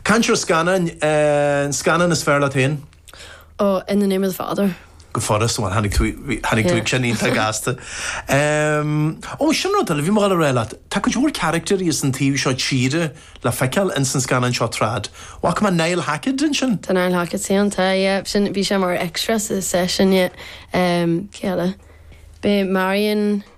Caint ar scannáin, an scannán is fearr leat féin? Oh, In the Name of the Father. Go furast, bhuel, tháinig tú, tháinig tú ag sin iontach gasta. Oh, sin rud eile, bhí mé dhul a rá leat, tá cuid mhór caractairí as an taobh seo tíre le feiceáil ins an scannán seo trad. Chonaic mé Niall Hackett ansin. Tá Niall Hackett ann, tá, yeah, sin, bhí sé mar extra sa, sa sin, yeah. Cé eile? B'é Marion.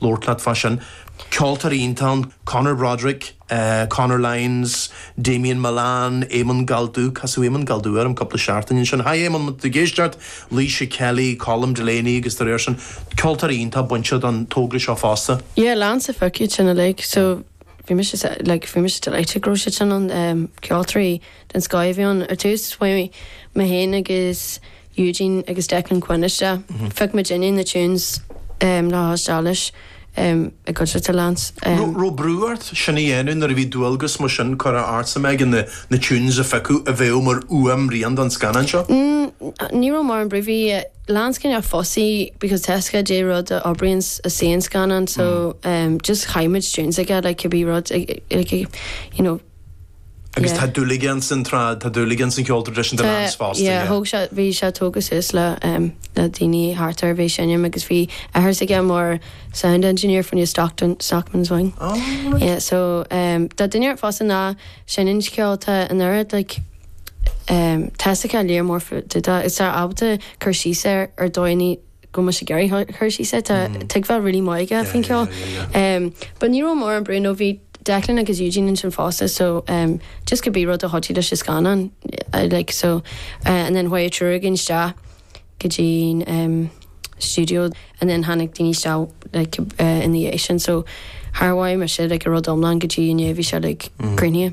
labhairt leat fá sin. Ceoltóirí iontach ann, Conor Broderick, Conor Lyons, Damien Mullane, Éamonn Galldubh, casadh Éamonn Galldubh orm cúpla seachtain ó sin, haigh Éamonn, má tá tú ag éisteacht! Laoise Kelly, Colm Delaney agus dá réir sin. Ceoltóirí iontach bainte don togra seo fosta. Yeah, Lance a phioc iad sin uilig, so bhí mise sa, like, bhí mise delighted go raibh siad sin ann. Ceoltóirí den scoth a bhí ann. Ar dtús, mé fhéin agus. Eugene agus Declan Quinn isteach. Phioc muidinne na tunes le thaisteal leis i gcuideachta Lance. Raibh brú ort sin a dhéanamh nuair a bhí dualgas mar sin curtha ortsa, Megan, na tunes a phiocadh a bheadh mar fhuaimrian don scannán seo? Ní raibh mórán brú, bhí Lance cineál fussy because tá fhios aige caidé rud a oibríonns ins an scannán so just chaith muid tunes aige like cibé rud like you know, Agus tá dúil aige ins an trad, tá dúil aige ins an cheol tradisiúnta Lance fosta. Yeah, thóg sé, bhí sé tógtha suas le na daoine thart air, a bhí ag seinm agus bhí athair s'aige mar sound engineer for New Stockton, Stockton's Wing. Oh, right. Yeah, so um, tá duine ar fosta ná seinm ceol tá an oiread like, um, tá fhios aige léar mór fá dtaobh de, is tá ábalta cur síos air ar dóigh go mba sé Gary Hirshey sa tuigbheáil really maith aige faoin ceol. But ní raibh mórán brú nó bhí Declan agus Eugene ansin fosta so just cibé rud a thoití leis an scannán like so and then chuaigh an triúr againn isteach go dtí an studio and then tháinig daoine isteach like ina dhiaidh sin so char mhothaigh mise like an rud iomlán go dtí inné bhí sé like cruinnithe.